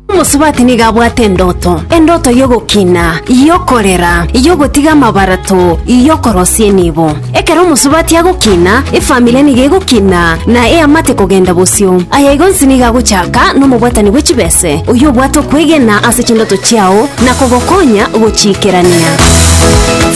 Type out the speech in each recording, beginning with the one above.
Omosubati nigo abwate endoto, endoto y'ogokina, y'okorera, y'ogotiga amabarato, y'okorosia enibo. Ekero omosubati agokina, efamiri nigo egokina na eamate kogenda bosio. Aya igo onsi nigo agochaka nomobwatani bwe chibese, oyio obwate okwegena ase chindoto chiao na kogokonya gochiikerania.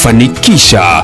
Fanikisha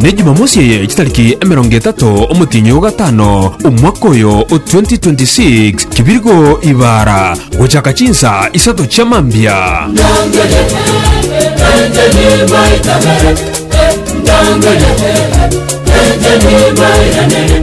Ne Jumamosi eye chitariki emerongo etato omotienyi o gatano omwaka oyo o 2026, kibirgo ibara gochaka chinsa isato chia mambia. Ndangele, eh, ndangele, eh, eh, enche nibairanerie.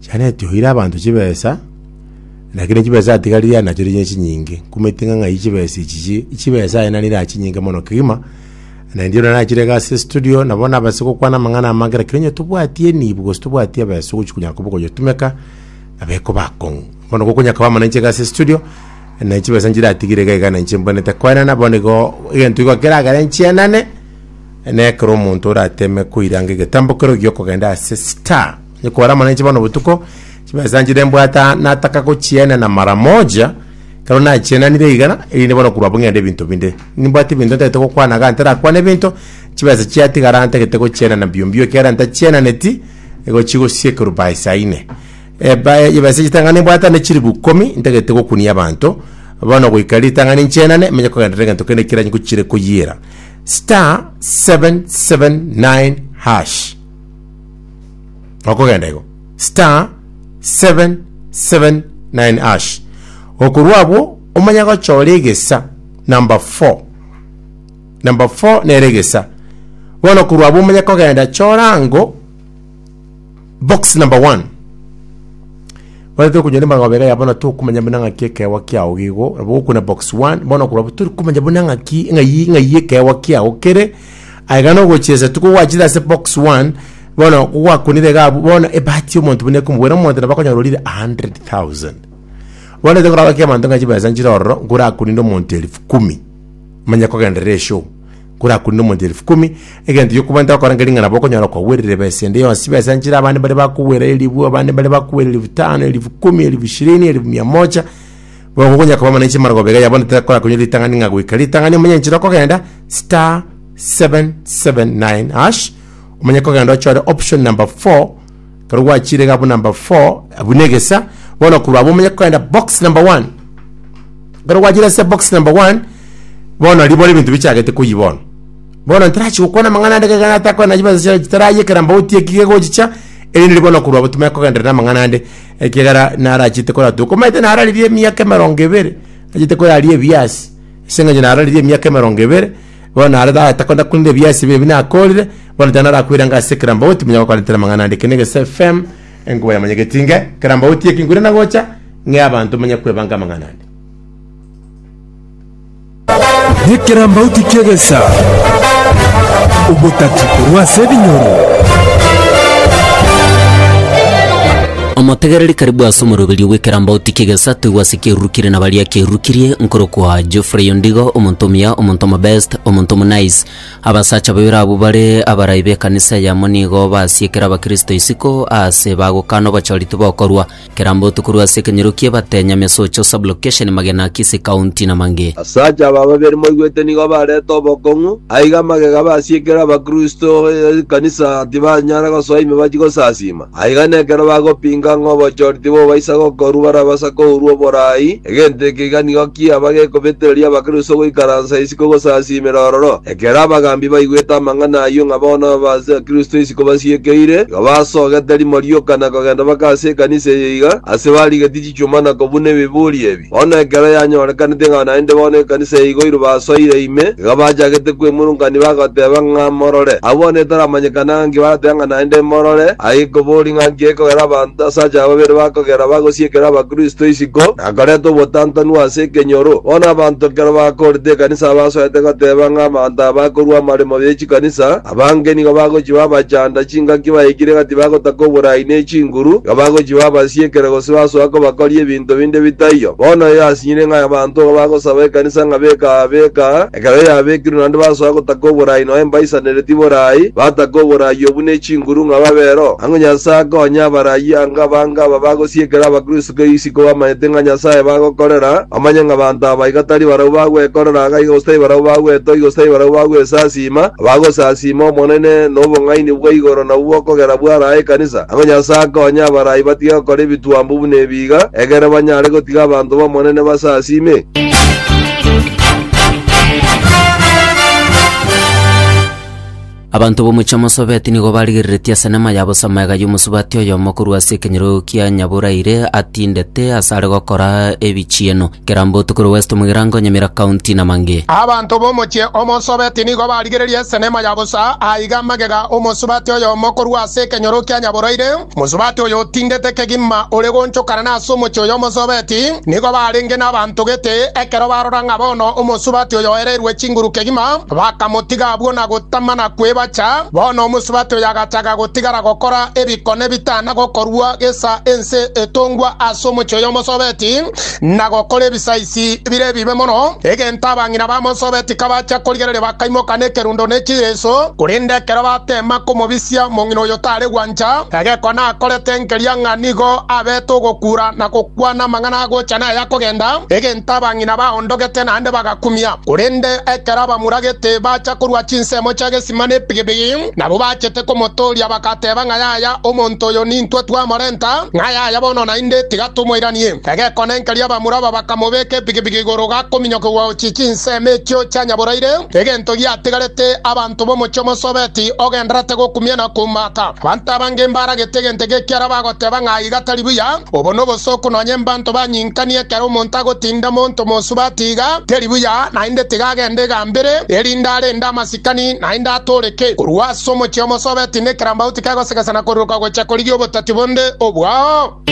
chianetioire abanto chibesa, lakini chibesa chiatigarire aye nachio nigo chinyinge. Nkumanyete ng'a ng'ai chibesa echi chi- chibesa aye nari nere chinyinge mono kegima, na inche buna nachire iga ase estudio, nabo nabase gokwana amang'ana amange lakini onye tobwati enibo gose tobwati ebesa ogochi konya koba okonyetumeka, nabo ekoba akong'u. Bono gokonya koba inche iga ase estudio, na chibesa nchiratigire iga iga na inche mbwenerete koenana, bono igo egento igo keragere nchienane, na ekero omonto orateme koiranga egetambo kerogo gi'okogenda ase star. Ekora mono inche bono botuko, chimesa nchire mbwata nataka gochienena mara moja, ekero nachienanire iga, erinde bono korwa abwo ng'ende ebinto binde. Nimbwate ebinto ntagete gokwana iga ntarakwane ebinto, chibesa chiatigara ntagete gochienana mbio mbio ekiagera ntachienaneti, nigo chigosiekerwa by saa ine. Ebae chibesa echi tang'ani nimbwate ande chilifu ikomi, ntagete gokunia abanto, bono goika ritang'ani nchienane, menye kogenda negento kende ekero nchiire koyiira. Star, seven, seven, nine, hash. okogenda igo star 779 ash okorwa abwo omanye gochora egesa number 4 number 4 nere egesa bono okorwa abwo omanye kogenda chora ango box number 1 bono tokonyoria magoba iga yabono tokomanya buna ng'aki ekeegwa kiago igo nabo okona box 1 bono okorwa abwo torikomanya buna ng'aki ng'ai ng'ai ekeegwa kiago kere. Aiga nogochiesa tikogwachire ase box one bono kogwakunire iga abwo bono ebahati y'omonto buna ekomobwera omonto nabo akonyora orire 100,000 bono ete koraba ki abanto ng'a chibesa nchire ororo nkorakuninde omonto elfu kumi manya kogenderera eshow nkorakuninde omonto elfu kumi egento giokobua ntogokora nkeri ng'a nabo okonyora kwagwerire ebesa ende yonsi chibesa nchire abande mbare bakogwera elibwe abande mbare bakogwera elfu tano elfu kumi elfu shirini elfu mia moja. Bono konya koba mwananchi mara gobega yabono takora konya ritang'ani ng'a goika ritang'ani omenye enchera okogenda star 779 hash omenye kogenda ochore option number 4 kero gwachire iga abwo number 4 abwo na egesa bono korwa abwo omenye kogenda box number 1 kero gwachire ase box number 1 bono ribono ebinto bichagete koyi bono bono ntarachi gokwana amang'ana ande kegana atakwana chibesa chiaye chitarayekera mbauti ekige gochicha erinde ribono korwa abwo timanye kogenderera amang'ana ande ekiagera nare achiete koratua. Komanyete nararirie emiaka emerongo ebere, achiete koraria ebiasi, ase eng'encho nararirie emiaka emerongo ebere, bono nare ta- takona korire ebiasi ebi ebi nakorire, bono tari narakwire anga ase Kerambauti, manya gokorentera amang'ana ande. Eke na Egeso FM, enkuba ya Manyagetinge, Kerambauti eke nkwire nagocha, ng'e abanto manye kwebanga amang'ana ande. Nekerambauti ki'egesa, ogotaki korwa ase ebinyoro. Omotegereri karibu ase omoroberio bw'ekerambauti ki'egesa toigwe ase kiarurukirie na baria kiarurukirie, nkorokwa Geoffrey Ondigo, omonto omuya, omonto omobest, omonto omonice. Abasacha babere abwo bare abarai b'ekanisa eyemo nigo basiekire abakristo isiko aase bagokana obochori tibokorwa. Kera mbotuko rwe ase ekenyorokio ebate, Nyamesocho sub-location, Magena Akisi County na mangĩ. Asacha aba babere moigwete nigo barete obokong'u, aiga magega basiekere abakristo b'ekanisa tibanyara gosoa ime bachie gosasiima. Aiga nekero bagopinga ng'a obochori tibobaisa gokorwa barabasa kourwa oboraai, Egento eke iga nigo kiaba gekobetereria Abakristo goikaransa isiko gosasiimera ororo. Ekero abagambi baigwete amang'ana ayio ng'a bono Abakristo isiko basiekeire, igo basogete rimo rioka na kogenda baka ase ekanisa eye iga ase barigetie chichuma na kobuna ebiburi ebi. Bono ekero yanyorekanete ng'a naende bono ekanisa yaigoirwe basoire ime, iga bachagete kweng'urunkania bagoteeba ng'a morore. Agwo bono etaramanyekana ng'a nki barateba ng'a naende morore, aye kobori ng'a nki ekogera abanto ase ache aba babere bakogera bagosiekera Abakristo isiko. Nigo nakareta obotantanu ase ekenyoro. Bono abanto ekero bakooreta ekanisa abasoete goteba ng'a abanto aba bakorua amaremo ye chikanisa, abange nigo bagochiba abachanda chingaki baikire gati bagotaka oboraai ne chinguru, iga bagochiba abasiekere gose basoa kobakoria ebinto binde bitaiyo. Bono eyo asinyire ng'a abanto igo bagosaba ekanisa ng'a beka aa, beka aa, Ekero yabekirwe naende basoa gotaka oboraai noe mbaisaniretie boraai, bataka oboraai obwo ne chinguru ng'a babe roho. Ang'o Nyasae akonye abaraai ango abange aba bagosiekera Abakristo kera isiko bamanyete ng'a Nyasae bagokorera, bamanye ng'a abanto aba iga tari barabwo bagwekorera iga gose tari barabwo bagwetogia gose tari barabwo bagwesasiima, abagosasiima Omonene nobong'aini bwa igoro nabwo bokogera bw'arae ekanisa? Ang'o Nyasae akonye abaraai batige gokora ebituomba buna ebi? iga, ekero banyare gotiga abanto b'Omonene basasiime. Abanto b'omochie o Mosobeti nigo barigereretie ase eneema ya bosama ega y'omosubati oyomo korwa ase ekenyoro kia Nyaboraire atindete asare gokora ebichieno. Kerambotu korwa West Mugirango, Nyamira County, Namangi. Abanto b'omochie o Mosobeti nigo barigererie ase eneema ya bosa aiga magega omosubati oyomo korwa ase ekenyoro kia Nyaboraire. Mosubati oyotindete kegima ore goonchokana nase omochie oyo omosobeti, nigo barenge nabaanto gete. Ekero barora ng'a bono omosubati oyo oereirwe chinguru kegima, bakamotiga abwo na gotama na kwebacha. Bono omosubati oyo agachaga gotigara gokora ebikone bitana gokorua gesa ense etongwa ase omochie oyo omosobeti. na gokora ebisaisi bire ebibe mono, egento abang'ina ba Mose obetika bachia korigereria bakaimoka nekerundo ne chiireso, korende ekero bateema komobisia omong'ina oyo tare gwancha, egekone akorete enkeria ng'a nigo abete ogokuura na gokwana amang'ana agocha na aya akogenda, egento abang'ina baondogete naende bagakumia. Korende ekero abamuragete bacha korua chinsemo chia gesima ne epigipigi, Nabwo bachete komotooria, bagateeba ng'a yaya omonto oyo nintwe twamorenta, ng'a yaya bono naende, tiga tomoiranie. Egekonenkereria abamura aba bakamobeeka epigipigi igoro gakominyokigwa gochia chinsemo echio chia nyaboraire, egento giatigarete abanto b'omochie omosobeti ogendererete gokumia na koumata. Abanto abange mbaragete egento eke ekiara bagoteeba ng'a aiga tari buya. Obo nobosooku nonya embanto banyinkanie ekero omonto agotinda monto mosubati iga, teri buya, naende tiga agende igambere, erinde arende amasibe. Ikani naende atooreke. Korwa ase omochie omosobe tindi ekerambauti kegosegesana koruruka gochia korigia obotati bonde obwao.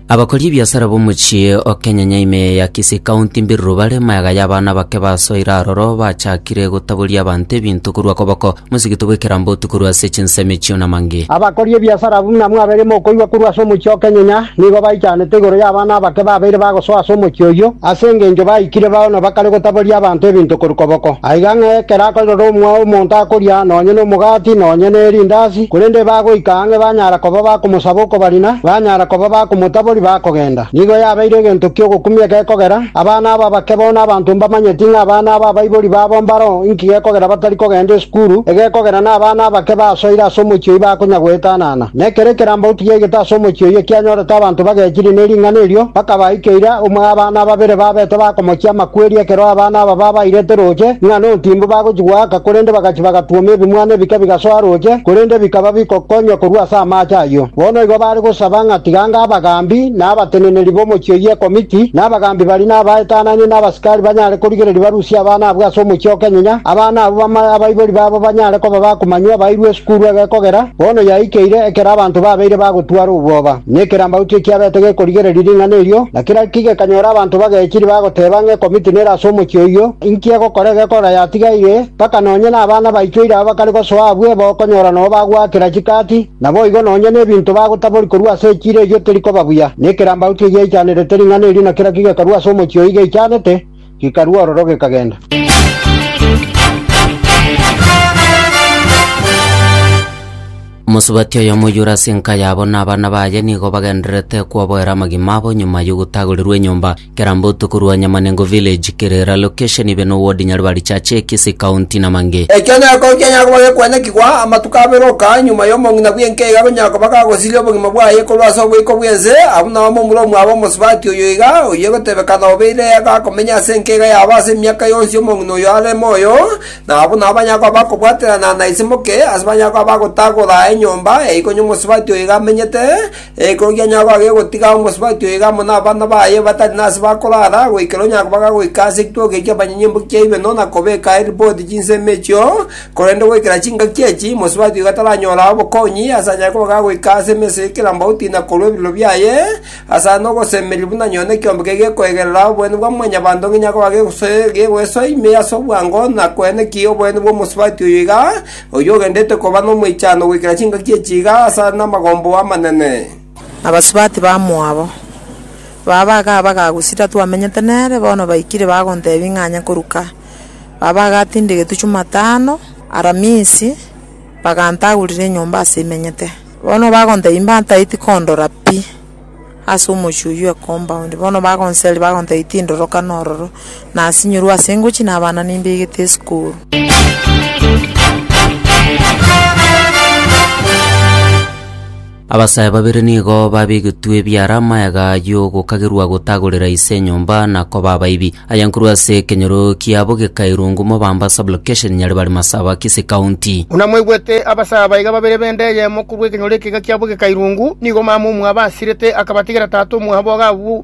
Abakori ebiasara b'omochie o Kenyanya ime ya Kisii County mbiruru bare maega y'abana bake basoire aroro bachakire gotaboria abanto ebinto korwa koboko. Mosigete bw'ekerambe otwe korwa ase chinsemi echio namange. Abakori ebiasara abwo buna mwabeire mokoigwa korwa ase omochie o kenyenya, nigo baichanete igoro y'abana abake babeire bagosoa ase omochie oyio, ase engencho baikire bao na bakare gotaboria abanto ebinto korwa koboko. Aiga ng'a ekero akorerora omwao omonto akoria nonye nomogati, nonye nerindasi, korende ebagoika ang'e banyara koba bakomosaba okobarina, banyara koba bakomotabori bakogenda. Nigo yabeire egento ki'ogokumia gekogera, Abana aba bake bono abanto mbamanyeti ng'a abana aba abaibori babo mbaro, inki gekogera batari kogenda esukuru? Egekogera nabana abake basoire ase omochie oyio bakonya goetanana. Na ekero ekerambe otigaigete ase omochie oyio kianyorete abanto bagechirie ne ring'ana erio, bakabaika eira, omwe abana babere babete bakomochia amakweri ekero abana aba babairete roche ng'a nontimbu bagochi goaka, korende bagachi bagatwoma ebimwana ebike bigasoa roche, korende bikaba bigokonywa korwa ase amaache ayio. Bono igo bare gosaba ng'a tiga ngabagambi. na abateneneri b'omochie oyio ekomiti, na abagaambi baria, na abaetanania, na abasikari banyare korigereria barusie abana abwo ase omochie o kenyunya, abana abwo bamae abaibori babo banyare koba bakumanywa abairwe esukuru egekogera, bono yaikeire ekero abanto babeire bagotwara obwoba, na ekero amauto ekiabete gekorigereria ring'ana erio, na kera ki gekanyora abanto bagechiri bagoteba ng'a ekomiti nere ase omochie oyio, inki egokora egekogera yatigaire, mpaka nonye nabana baito ira abakare gosoa abwo eba okonyora nao bagoakera chikati, Naboigo nonya nebinto bagotaboria korwa ase echiira eyio terikoba buya, na ekerambau tigiaichanerete ring'ana erio, na kera kigekarua ase omochie oyio geichanete, gikarua ororo gekagenda. Omosubati oyomo oyoire ase enka yabo na abana baye nigo bagendererete koboera amagima abo nyuma y'ogotagorirwa enyomba. Kerambo tokorwa Nyamanengo Village, Kirira location ibe no ward Nyaribari Chache, Kisii County na mang'e. Ekio noko nkianya koba gekwanekigwa, amatuko abere gokaa nyuma y'omong'ina bw'enka iga gonya koba gagosiria obogima bwaye korwa ase oboiko bw'ense, abwo nao momura omwabo omosubati oyo iga, oyio egotebekana obeire iga akomenyia ase enka iga yabo ase emiaka yonsi omong'ina oyio are moyo, na abwo nao banya koba bakobwaterana na isimoke, ase banya koba bagotagora enyomba eikonywa omosubati oyo iga amenyete. Ekero gianyago agegotiga omosubati oyo iga amo nabana baye batari nase bakorara, goikera onye baga goika ase ekitoka ekio abanyanyimbu kiaino na kobeka eripoti chinsemo echio, korende goikera chingaki echi, mosubati oigo taranyora obokonyi, ase anyare koba gagoika ase emesa ye kerambauti na korwa ebiroro biaye, ase are nogosemeria buna nyoni ekeombe keria gekoegerera oboene bwa mwanyabanto onye gianyago gegosoe gegoesoa ime ase obwango na koenekia oboene bw'omosubati oyo iga, Oyio ogenderete koba nomoichano goikera chingaki echi iga ase are namagombo amanene. Abasubati bamoabo, baba iga abagagusida twamenyete nere, bono baikire bagontebia ing'anya koruka. Baba iga atindigetwe Chumatano, Aramisi, bagantagurera enyomba ase imenyete. Bono bagontebia mbantaeti kondora pi. ase omochie oyio ekompaundi, bono bagonseri bagontebia tindoro kana ororo, nasinyorwe ase ngochia na abana nimbegete esukuru. Abasae babere nigo babegetwe ebiara amayega y'ogokagerwa gotagorera ise enyomba na koba abaibi. Aya nkorwa ase ekenyoro kiabo gekairungwa Mobamba Sub-location Nyaribari Masaba Kisii County. Buna mwaigwete, abasaa baiga babere b'enda eyemo korwa ekenyoro ekeiga kiabo gekairungwa, nigo mama omwabo asirete, akabatigera tata omwabo iga abwo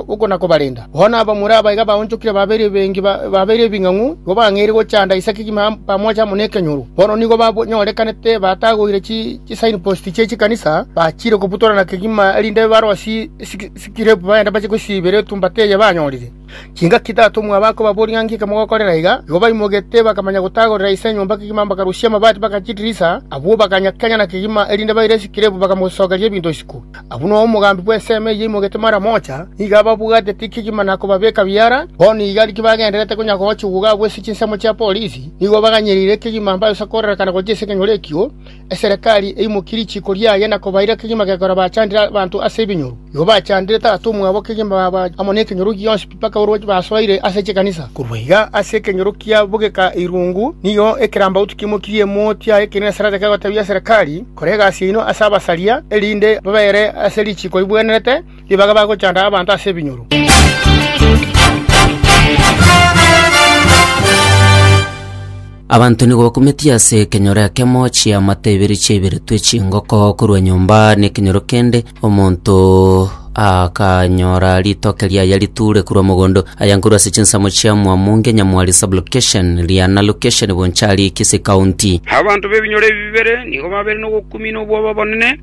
okonakobarenda. Bono abamura abaiga baonchokire babeire bengi, babeire ebing'ang'u, igo bang'eire gochanda Isaya kegima pamoja amo nekenyoro. Bono nigo banyorekanete batagoire chisignpost chie chikanisa, bachiire kobutorana kegima erinde barosie Sikrebu bagende bache gosiibera etumbata eye banyorire. Chingaki tata omwabo akobaboria ng'a ng'iki mogokorera iga, igo baimogeete bakamanya gotagorera ise enyomba kegima bakarusia amabati bagacha chidirisa. Abwo bakanya kegima na kegima, erinde baire sikrebu bakamosokeria ebinto isiko. Abwo noyo omogambi bw'ensemo eyio aimogeete maramocha, nigo ababwateti kegima na kobabeka biara. Bono iga riria bagendererete konya gochigwa iga abwo ase chinsemo chia polisi, nigo baganyereire kegima mbaye gosakorerekana gochia ase ekenyoro ekio. Eserekari eimokie richiiko riaye na kobaira kegima gekora bachandire abanto ase ebinyoro. Igo bachandire tata omwabo kegima baba amo nekenyoro gionsi mpaka orwachio basoire ase chikanisa. Korwa iga ase ekenyoro kia bogeka irungu nigo ekerambauti kimokirie emoti yaye ekeene na Sarada kegotebia Eserekari, Kora egasi yaino ase abasaria, erinde babeere ase richiiko ribuanerete, Nibaga bagochanda abanto ase ebinyoro. Abanto nigo bakumetie ase ekenyoro ekemo chiamate ibere chiaiberetwe chingoko korwa nyomba nekenyoro kende omonto akanyora ritoke riaye riture korwa mogondo aya nkorwa ase chinsemo chia Mwamunge Nyamwari sublocation Riana location Bonchari Kisii county Abanto b'ebinyoro ebi bibere nigo babeire nogokumia na obwoba obonene,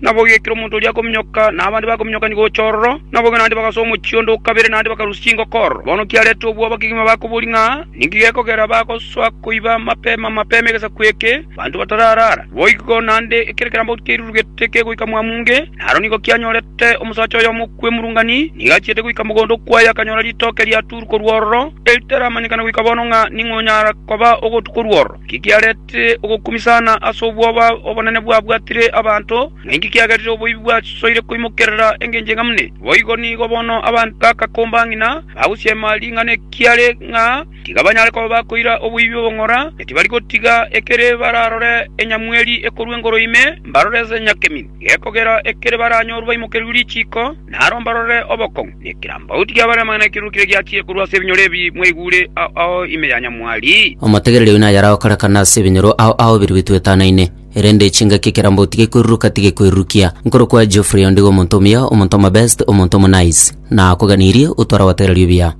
Nabo gekero omonto oria akominyoka, na abande bakominyokania gocha ororo, na boigo naende bagasoa omochie onde o kabere, naende bakarusia chingoko ororo. Bono kiareta obwoba abagima bakoboria ng'a, Ninki gekogera bagosoa koiba mapema mapema egesaku eke, banto batararara? Boigo naende ekero ekerambe kiairurugete kegoika Mwamunge, naro nigo kianyorete omosacha oyomo okwemurungani, nigo achiete goika mogondo okwaye akanyora ritoke riatuurwa korwa ororo, eritaramanyekana goika bono ng'a ning'o onyara koba ogotu korwa ororo. Ki kiareta? Tiri ogokumisana ase obwoba obonene bwabwatire abanto, na inki kiagerire oboibi bwasoire koimokerera engencho enga mune? Boigo nigo bono abanto bagakomba ng'ina bagosiema ring'ana ekiare ng'a tiga banyare koba bakoira oboibi obong'ora, na tibari gotiga ekere bararore enyamweri ekorua engoru ime, mbarore ase enyakemi gekogera ekere baranyorwe baimokerigwe richiiko. Naro mbarore obokong'u ne ekirambauti ki'abare amang'ana ekirurukire giachire korwa ase ebinyoro ebi mwaigure ao ao ime ya nyamwari. Omotegereri oino ayaragokorekana ase ebinyoro ao ao biri bitwetanaine, erende chingaki ekerambauti gekoiruruka tigekwerurukia. Nkorokwa Geoffrey ondigo omonto omuya, omonto omabest, omonto omonaiss, na akoganirie, otware abategereri obuya.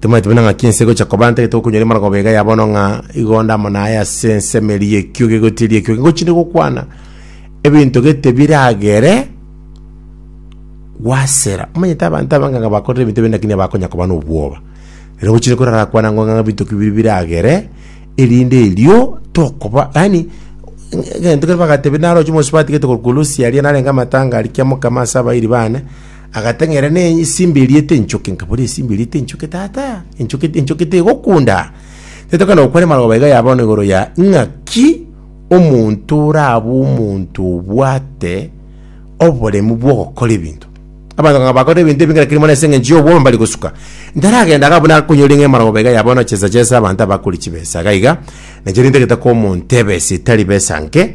Timanyeti buna ng'aki ense egocha koba, ntagete gokonyora imana koba iga ya bono ng'a igonda amo na aye ase ensemeri y'ekio gegotiiri ekio gegochire gokwana ebinto gete biragere gwasera. Omanyete abanto abange ng'a bakorire ebinto ebi lakini abakonya koba n'obwoba. Ere gochire korara kwana ng'a ng'a ebinto biri biragere erinde erio tokoba yaani egento kere bagatebia naroche omosubati gete korokwa olosi aria narenge amatanga aria kia mokama ase abairi bane Agateng'era ne esimba eriete enchoke, nkabora esimba eriete enchoke, Tata, enchoke, enchoke tegokunda. Tetokana gokwera marogoba iga yabono igoro ya ng'aki omonto orabe omonto obwate oboremu bw'ogokora ebinto. Abanto ng'a bakora ebinto ebi ng'erekeri mono ase engencho y'obwomo mbari gosuka. Ntaragenda iga buna akonyora ng'a marogoba iga yabono chesa chesa abanto abakori chibesa iga iga, na chiarenge tagete komontebesa etari besa nke,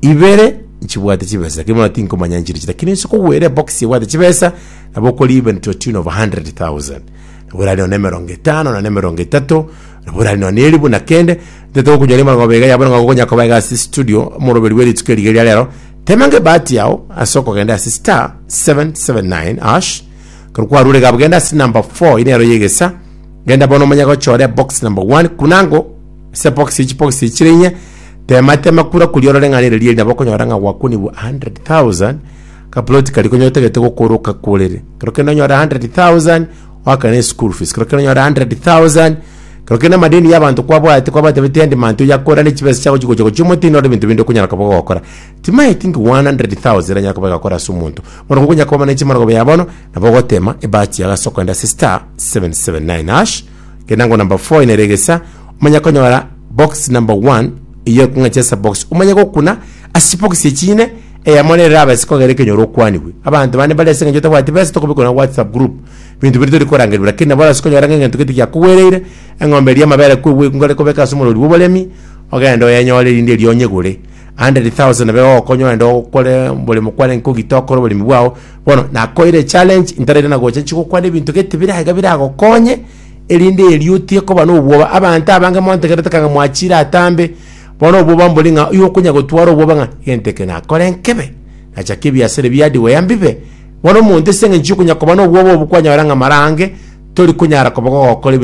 ibere nchibwate chibesa lakini bono tinkomanya nchirichi lakini inse kogwera ebox ebwate chibesa nabo okori even to a tune of 100,000 nabo erari none emerongo etano none emerongo etato nabo erari none eribu na kende ntete gokonyora emerongo abere iga yabo nabo gokonya koba iga ase studio omoroberi bwe rituko riga eria rero temange ebahati yao ase okogenda ase star 779 ash ekero kwarure iga abagenda ase number 4 ere ero ya egesa genda bono omanye gochora ebox number 1 kunango Ase ebokisi echi chibokisi echi chire ng'a tema tema kura kuria orore ng'a rere rieri nabo okonyora ng'a gwakunigwe 100,000 ka ploti karia konya otagete gokoroka korere. Ekero kende onyore 100,000 oakane school fees, ekero kende onyore 100,000 ekero kende amadeni ya abanto kwabwate kwabatebetia en demand oyo akore ne chibesa chiago chigocha gochia omotwe noro ebinto binde okonyara koba ogokora. Timanyeti think 100,000 eranyare koba egakora ase omonto. Bono gokonyara koba na echi maragoba ya bono nabo ogotema ebati yago ase okogenda ase star 779#. Genda ngo number 4 ine regesa omanye konyora box number 1 iyo ekong'echesa box omanye gokuna ase box echine eyamo rero rabe ase kogera ekenyoro okwanigwe abanto bande bari ase eng'encho otabwati besa tokobekwa na whatsapp group binto biri tori korangerwa lakini nabo orase konyora ng'a egento gete giakogwereire eng'ombe eria amabere kwegwekwa ngare kobeka ase omorori bwa oboremi ogende oyenyore erinde erio onyegore 100,000 nabo egokonya ogende okore omoremo kwane nkogita okore oboremi bwao. Bono nakoeire echallenge ntaraire na gocha nchigokwana ebinto gete bire aiga biragokonye erinde erio otigekoba na obwoba abanto abange mwantegerete kanga mwachire atambe bono obwoba mbori ng'a oyo okonya gotwara obwoba ng'a egento eke nakore nkebe nachake ebiasara ebi hardware mbibe bono omonto ase eng'encho yokonya koba na obwoba obwo kwanyora ng'a marange tori konyara koba gogokora ebi-